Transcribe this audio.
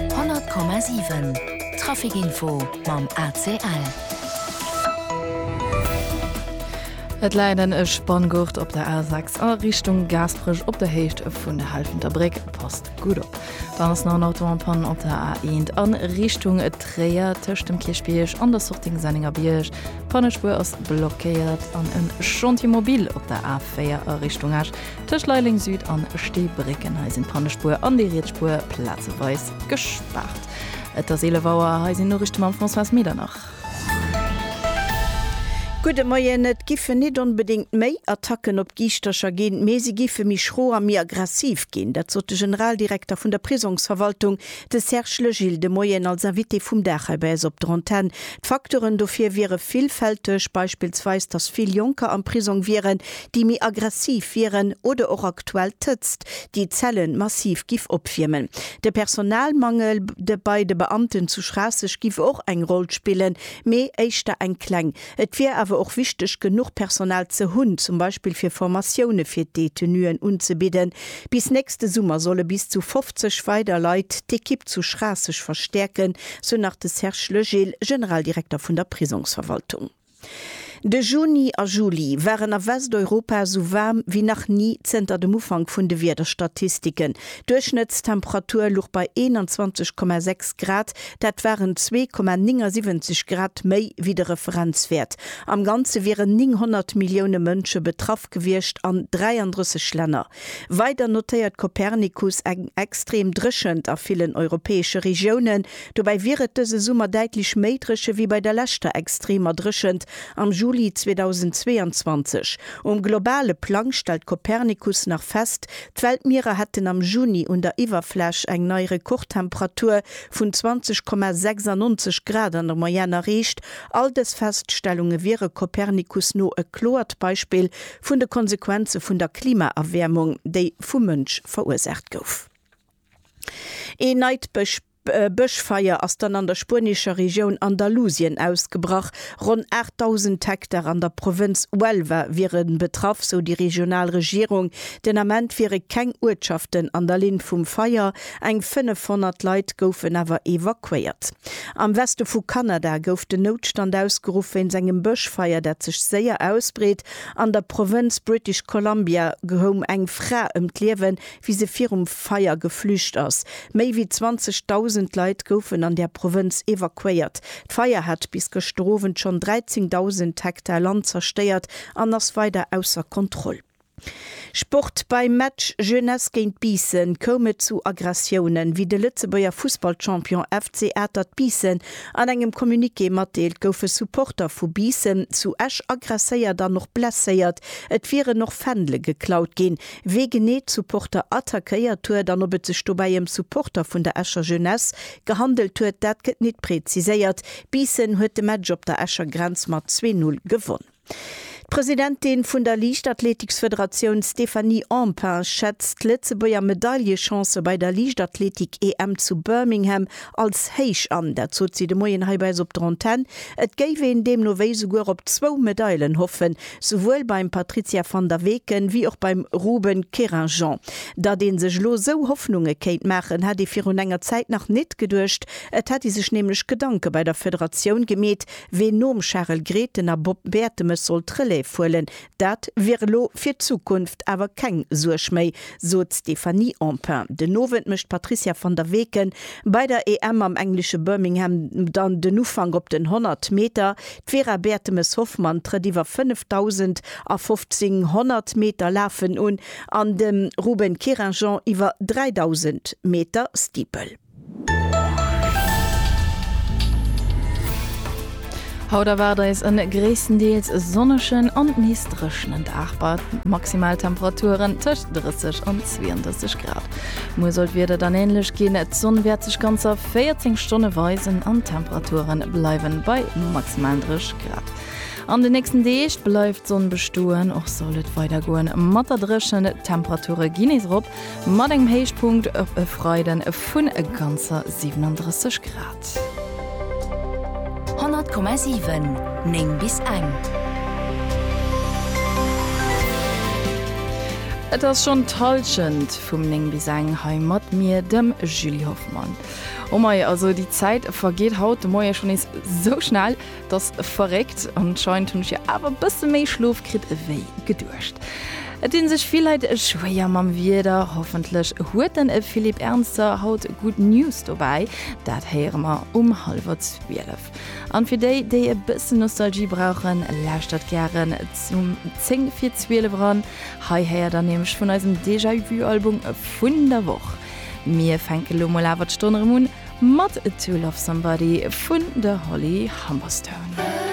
100,7 Trafic Info mam ACL. Et leiden e Spanngurt op der A6 a Richtung Gasprech op der Héicht vun der Halfenter Bréck passt gut op. Dann ass nach en Auto an Panne op der A1 an Richtung Tréier tëscht dem Kierchbierg an der Sortie Senninger Bierg. D'Pannespuer ass blockéiert an en Chantier mobile op der A4 a Richtung Esch. Tëscht Leiling Süd an Steebrécken, hei sinn d'Pannespuer an déi Rietsspuer plazeweis gespaart. Et ass 11 Auer, hei sinn d'Noriichte mam Françoise Medernach. Gudde Moien, Et giffe nit onbedéngt méi Attacken op Giischtercher ginn, mee si giffe méi schro a méi aggressiv ginn. Dat sot de Generaldirekter vun der Prisongsverwaltung, de Serge Legil, de Moien als Invité vum Dag hei bei eis op der Antenn. D'Facteuren dofir wiere villfälteg, beispillsweis, datt vill Jonker am Prisong wieren, déi méi aggressiv wieren, oder och aktuell d'Hëtzt, déi d'Zelle massiv giff opwiermen. De Personalmangel de bei de Beamten zu Schraasseg giff och eng Roll spillen, mee éischter eng kleng. Et wier awer och wichteg, genuch Personal ze hunn, zum Beispill fir Formatioune fir d'Détenuen unzebidden. Bis nächste Summer solle bis zu 50 weider Leit d'Ekipp zu Schraasseg verstäerken, sou nach de Serge Legil, Generaldirekter vun der Prisongsverwaltung. De Juni a Juli waren a Westeuropa esou waarm wéi nach ni zënter dem Ufank vun de Wiederstatistiken. D'Duerchschnëttstemperatur luch bei 21,6 Grad, dat waren 2,79 Grad méi wéi de Referenzwäert. Am Ganze wieren 900 Millioune Mënsche betraff gewiescht an 33 Länner. Weider notéiert Copernicus eng extrem Dréchent a villen europäesche Regiounen. Dobäi wier et dëse Summer däitlech méi dréche wéi bei der leschter extremer Dréchent am Juli 2022. Um globale Plang stellt Copernicus nach fest, d'Weltmierer hätten am Juni un der Iwwerfläch eng nei Rekordtemperatur vun 20,96 Grad an der Moyenne erreecht. All dës Feststellunge wiere Copernicus no e kloert Beispill vun de Konsequenze vun der Klimaerwäermung, déi vum Mënsch verursaacht gouf. Een neit Bësch. D'Bëschfeier ass dann an der spuenescher Regioun Andalusien ausgebrach. Ronn 8.000 Hektar an der Provënz Huelva wiere betraff, sou déi regional Regierung. Den Ament wiere keng Uertschaften an der Linn vum Feier, eng 500 Leit goufen awer evakuéiert. Am Weste vu Kanada gouf den Noutstand ausgeruff wéinst engem Bëschfeier, dat sech séier ausbreet. An der Provënz British Columbia koum eng Fra ëm d'Liewen, wéi se virum Feier geflücht ass. Méi wéi 20.000 Leit goufen an där Provënz evakuéiert. D'Feier hat bis gëschter Owend schonn 13.000 Hektar Land zerstéiert an ass weider ausser Kontroll. Sport, Beim Match Jeunesse géint Biissen koum et zu Aggressiounen. Wéi de Lëtzebuerger Fussballchampion FC Atert Biissen an engem Communiqué matdeelt, goufe Supporter vu Biissen zu Esch aggresséiert an och blesséiert. Et wieren och Fändele geklaut ginn. Wee genee d'Supporter attackéiert huet an ob et sech dobäi ëm Supporter vun der Escher Jeunesse gehandelt huet, dat gëtt nit präziséiert. Biissen huet de Match op der Escher Grenz mat 2, 0 gewonn. D'Presidentin vun der Liichtathleetiksfederatioun Stéphanie Empain schätzt d'Lëtzebuerger Medaillechancë bei der Liichtathleetik-EM zu Birmingham als héich an. Dat sot si de Moien hei bei eis op der Antenn. Et géif een deemno wéi souguer op zwou Medailen hoffen, souwuel beim Patrizia van der Weken wéi och beim Ruben Querinjean. Datt ee sech elo sou Hoffnunge kéint maachen, hätt ee virun enger Zäit nach nit geduecht. Et hätt ee sech nämlech Gedanke bei der Federatioun gemeet, ween nom Charel Grethen a Bob Bertemes soll d'Relève huelen. Dat wier elo fir d'Zukunft awer keng Suerg méi, sot d'Stéphanie Empain. Den Owend mécht d'Patrizia van der Weken bei der EM am englesche Birmingham dann den Ufank op den 100 Meter. D'Vera Bertemes-Hoffmann trëtt iwwer 5000 a 1500 Meter Lafen un an de Ruben Querinjean iwwer 3000 Meter Steeple. Haut erwaart eis e gréisstendeels sonnegen an nees dréchenen Dag bei Maximaltemperaturen tëscht 30 an 32 Grad. Muer soll d'Wieder dann änlech ginn, d'Sonn wäert sech ganzer 14 Stonne weisen an d'Temperature bleiwen bei maximalen 3 Grad. An de nächsten Deeg bleift d'Sonn bestoen, och soll et weider goen mat der Dréchen. D'Temperature ginn nees erop, mat engem Héichpunkt op e Freide vun ganzer 37 Grad. 100,7 9 bis eng. Et ass schonn d'Hallschent vum 9 bis eng hei mat mir, dem Julie Hoffmann. Mann. Oh mei, also déi Zäit vergeet haut de Moie schonn nees sou schnell, dat ass verréckt. Anscheinend hunn ech jo awer e bësse méi Schlof kritt ewéi geduecht. Et dinn sech vill Leit schwéier mam Wieder. Hoffentlech huet den Philippe Ernster haut gutt News dobäi. Dat héiere mer um hallwer 12. An fir déi, déi e bëssen Nostalgie brauchen, lauschtert gären zum 10 vir 12 eran. Hei héiert der nämlech vun eisem Déjà-Vu-Album vun der Woch. Mir fänke lo mol awer d'Stonn erëm un mat To Love Somebody vun der Holly Humberstone.